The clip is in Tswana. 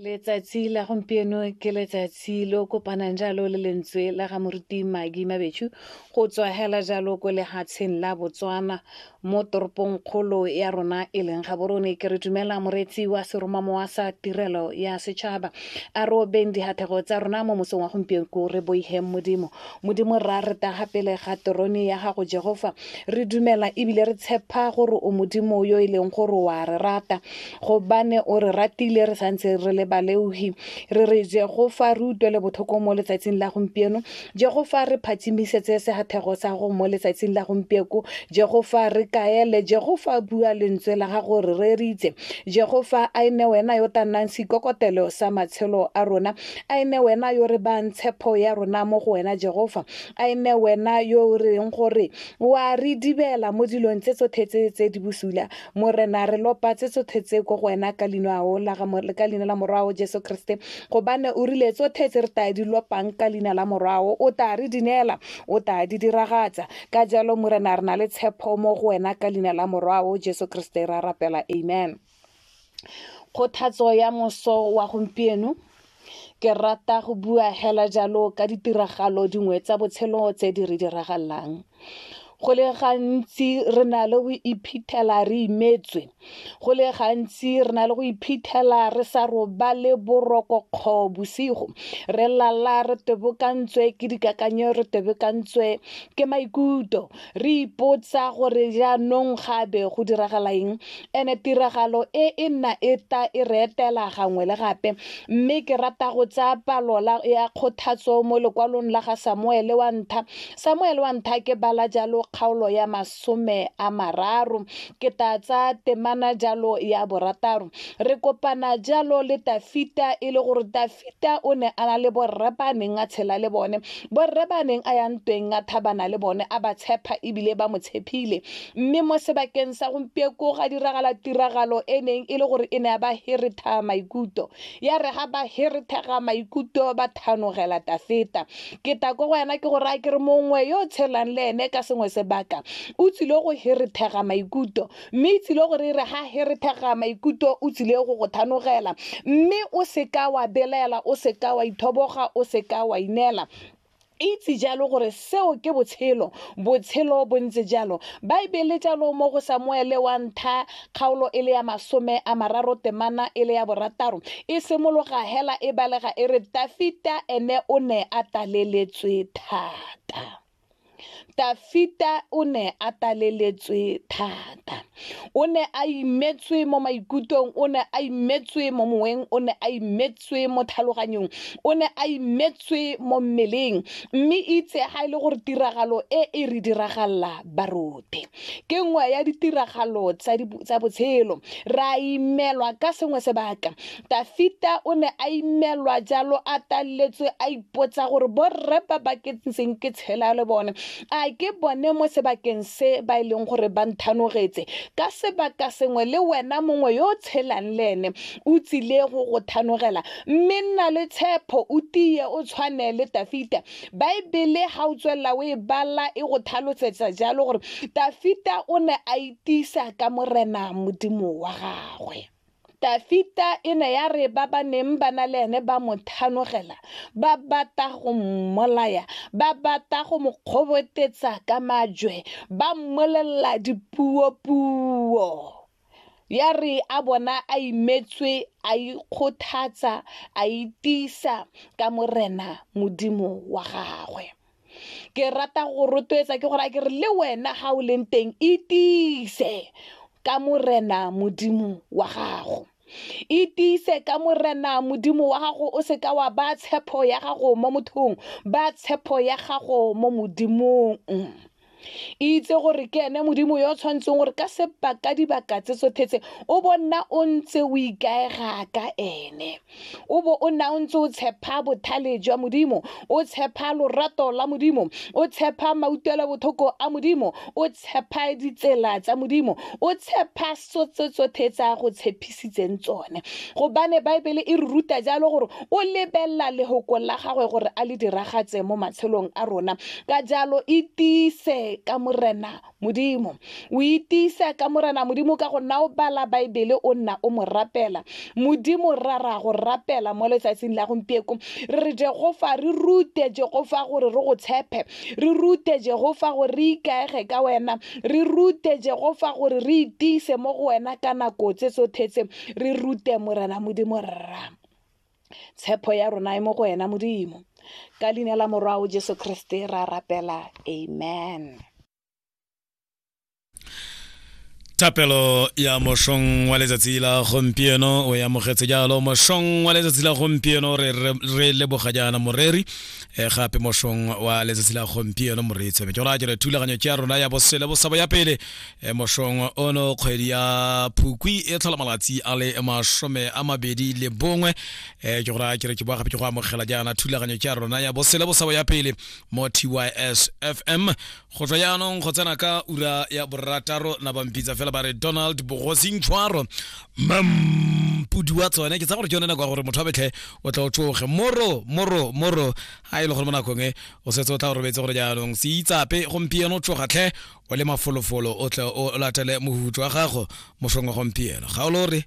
letsatsi la gompieno ke letsatsi lo kopanang jalo le lentswe la ga moruti magi mabetshu go tswa hela jalo ko lehatsheng la botswana mo toropong kgolo ya rona e leng gaborone ke re dumela moreetsi wa seromamowa sa tirelo ya setšhaba a robeng dihathego tsa rona mo mosong wa gompieno ko re boigeng modimo Modimo Rra, re tla ga pele ga terone ya gago Jehova. Re dumela ebile re tshepa gore o Modimo yo e leng gore wa re rata. Gobane o re ratile re santse re le baleogi. Re re Jehova re utlwele botlhoko mo letsatsing la gompieno. Jehova re phatšimisetse segathego sa go mo letsatsing la gompieko. Jehova re kaele. Jehova bua lentswe la gago re reeditse. Jehova a e ne wena yo tla nnang seikokotelo sa matshelo a rona. a e nne wena yo re bang tshepo ya rona mo go wena jehofa a e nne wena yo o reng gore wa re dibela mo dilong tse tsotlhe tse tse di bosula morena re lopa tse tsotlhe tse ko go wena ka leino ao la ka leina la morwao jesu kriste gobane o rile tsotlhe tse re taya di lopang ka leina la morwao o taya re di neela o taya di diragatsa ka jalo morena re na le tshepo mo go wena ka leina la morwao jesu kriste ra rapela amen kgothatso ya moso wa gompieno ke rata go bua hela jalo ka ditiragalo dingwe tsa botshelo tse di re diragalang go le gantsi re na le go iphitlhela re imetswe go le gantsi re na le go iphitlhela re sa robale boroko kgo bosigo re lala re tebokantswe ke dikakanyo re tebokantswe ke maikuto Re ipotsa gore jaanong ga be go diragala eng, ene tiragalo e e nna e ta e re etela gangwe le gape. Mme ke rata go tsaya palo la, ya kgothatso mo lekwalong la ga Samuele wa Ntlha. Samuele wa Ntlha ke bala jalo kgaolo ya masome a mararo, ke ta tsaya temana jalo ya borataro. Re kopana jalo le Tafita, e le gore Tafita o ne a na le borre ba neng a tshela le bone, Borre ba a neng a ya ntweng a thabana le bone a ba tshepa ebile ba mo tshepile. Mme mo sebakeng sa gompieko ga diragala tiragalo e neng e le gore e ne ya ba heretha maikuto. Ya re ga ba herethega maikuto ba thanogela Tafeta. Ke ta ko go wena ke go raya ke re mongwe yo o tshelang le ene ka sengwe sebaka o tsile go herethega maikuto mme e tsile gore e re ga he re thega maikuto o tsile go go thanogela mme o seka wa belaela o seka wa ithoboga o seka wa ineela itse jalo gore seo ke botshelo botshelo bo ntse jalo baebele jalo mo go samuele wa ntha kgaolo e le ya masome a mararo temana e le ya borataro e simologa hela e balega e re tafita ene o ne a taleletswe thata Tafita o ne a taleletswe thata. O ne a imetswe mo maikutlong, o ne a imetswe mo moweng, o ne a imetswe mo tlhaloganyong, o ne a imetswe mo mmeleng. Mme itse ga e le gore tiragalo e e re diragalela barote ke nngwe ya ditiragalo tsa botshelo. Re a imelwa ka sengwe sebaka, Dafita o ne a imelwa jalo a taletswe a ipotsa gore borre ba ba ke ntseng ke tshela le bone a ke bone mo sebakeng se ba e leng gore ba nthanogetse ka sebaka sengwe le wena mongwe yo o tshelang le ene o tsile go go thanogela mme nna le tshepho o tiye o tshwane le Dafita baebele ga o tswelela o e bala e go thalotsetsa jalo gore Dafita o ne a itisa ka morena modimo wa gagwe Dafita e ne ya re ba ba neng ba na le ene ba mo thanogela, ba bata go mmolaya, ba bata go mo kgobotetsa ka majwe, ba mmolelela dipuopuo. Ya re a bona a imetswe, a ikgothatsa, a itiisa ka Morena Modimo wa gagwe. ke rata go rotloetsa ke gore a ke re le wena ga o leng teng itiise ka morena modimo wa gago itiise ka morena modimo wa gago o seka wa ba tshepo ya gago mo mothong ba tshepo ya gago mo modimong itse gore ke ene modimo yo o tshwanetseng gore ka sebaka dibaka tse tsothetse o bo nna o ntse o ikaega ka ene o bo o nna o ntse o tshepa bothale jwa modimo o tshepa lorato la modimo o tshepa mautlwelo botlhoko a modimo o tshepa ditsela tsa modimo o tshepa tse tsotlhe tse a go tshepisitseng tsone gobane baebele e re ruta jalo gore o lebelela lehoko la gagwe gore a le diragatse mo matshelong a rona ka jalo itiise ka morena modimo o itiisa ka morena modimo ka go nna o bala baebele o nna o mo rapela modimo ra ra go rapela mo letsatsing la gompieko re re jegofa re rute jegofa gore re go tshepe re rute jehofa gore re ikaege ka wena re rute jehofa gore re itiise mo go wena ka nako tse tsothetse re rute morena modimo rra tshepo ya rona e mo go wena modimo ka leina la morwao jesu kriste ra rapela amen thapelo ya mošong wa letsatsi la gompieno o amogetse jalo mošong wa letsatsi la gompieno re leboga jaana moreri e gape mošong wa letsatsi la gompieno moreetsi me jora jere thulaganyo tša rona ya bosele bosabo ya pele e mošong ono kgwedi ya phukwi e tlhola malatsi a le masome a mabedi le bongwe e jora jere ke boa gape ke go amogela jaana thulaganyo tša rona ya bosele bosabo ya pele mo tys fm go tswa jaanong go tsena ka ura ya borataro na bampitsa fela ba re donald bogosing tshwaro mampudi wa tsone ke tsa gore ke yone nako ya gore motho a betlhe o tla o tsoge moro moro moro ga e le gore mo nakong e o setse o tla o robetse gore jaanong se itsape gompieno tsoga tlhe o le mafolofolo o tle o latele mohutu wa gago mosong wa gompieno ga o lo re